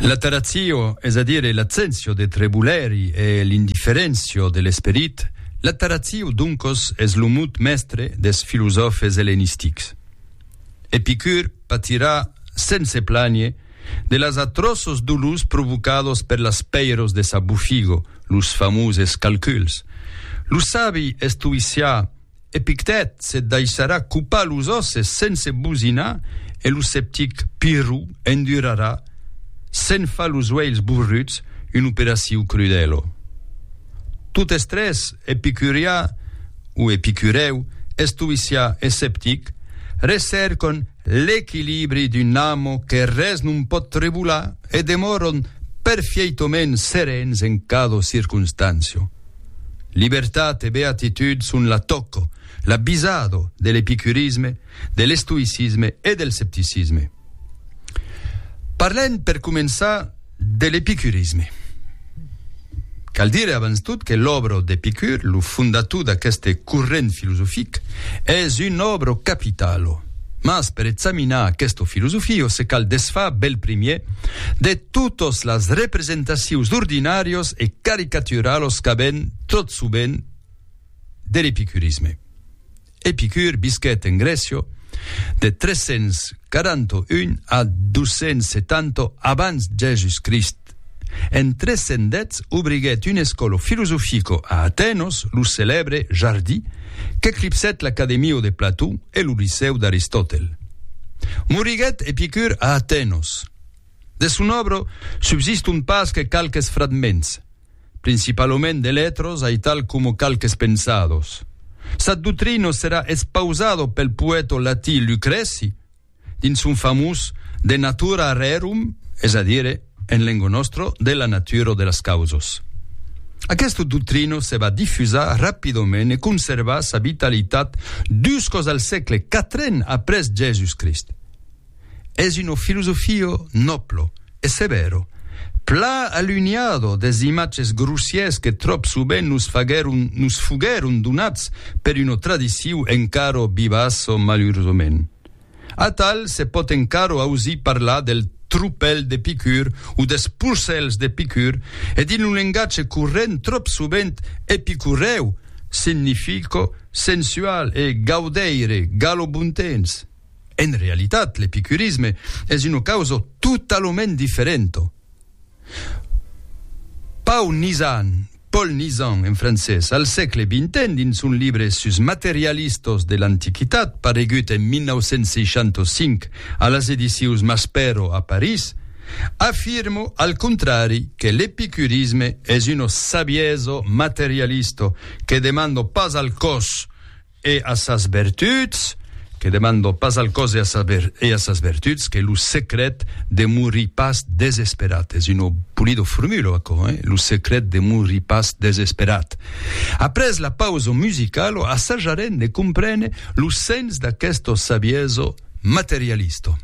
La taratio, es a dire l'abséncia de trebulèri e l'indifferéncia de l'esperit, la taratio doncos es lo mot mèstre des filosòfes ellenistics. Epicur patirà sense plànher de las atròços dolors provocados per las pèiros de sa bofigo, los famoses calculs. Lo sabi estoïcià, Epictèt se daissarà copar los òsses sense bosinar e lo sceptic Pirro endurarà, se'n far los uèlhs borruts, una operacion crudèla. Totes tres, epicurià o epicurèu, estoïcià e sceptic, recèrcan l'equilibri d'un amo que res non pòt trebolar e demòran perfieitament serens en cada circonstància. Libertat e beatitud son la tòco, la bisado de l'epicurisme, de l'estoïcisme e del scepticisme. Parlem per començar de l'epicurisme. Cal dire abans tot que l'òbro d'Epicur, lo fondator d'aqueste corrent filosofic, es un òbro capitalo. Mas per examinar aqueste filosofio se cal desfar bèl primièr de totes las representacions d'ordinàrios e caricaturalos qu'avèn tot sovent de l'epicurisme. Epicur visquèt en Grècia de 341 a 270 abans Jèsus Crist. En 310 obriguèt un escòlo filosofico a Atenos, lo celèbre Jardí, qu'eclipsèt l'Academio de Plató e lo Licèu d'Aristòtel. Moriguèt Epicur a Atenos. De son òbro subsiston pas que qualques fragments, principalament de letros aital coma qualques pensados. Sa doctrina serà espausada pel poèta latí Lucrèci, dins son famós De natura rerum, es a dire, en lengo nòstro, de la natura o de las causas. Aquesta doctrina se va difusar rapidament e conservar sa vitalitat juscòs al sègle quatren après Jèsus Crist. Es una filosofia nòbla e sevèra, pla alunhada des imatges grossièrs que tròp sovent nos faguèron, nos foguèron donats per una tradicion encara vivaça malurosament. Atal se pòt encaro ausir parlar del tropèl de picur o des porcèls de picur e dins lo lengatge corrent tròp sovent epicurèu significa sensual e gaudeire galobontens. En realitat l'epicurisme es una causa totalament diferenta. Pau Nizan, Paul Nizan en francés, al sègle vinten dins son libre sus materialistos de l'antiquitat paregut en 1965 a las edicions Maspero a París, afirmo al contrari que l'epicurisme es una sabiesa materialista que demanda pas al còs E a sas vertuts, que demando pas al còs e a sas vertuts, que lo secret de morir pas desesperat, es una polida formula aquò, eh? lo secret de morir pas desesperat. Après la pausa musicala, assajarem de comprene lo sens d'aquesta saviesa materialista.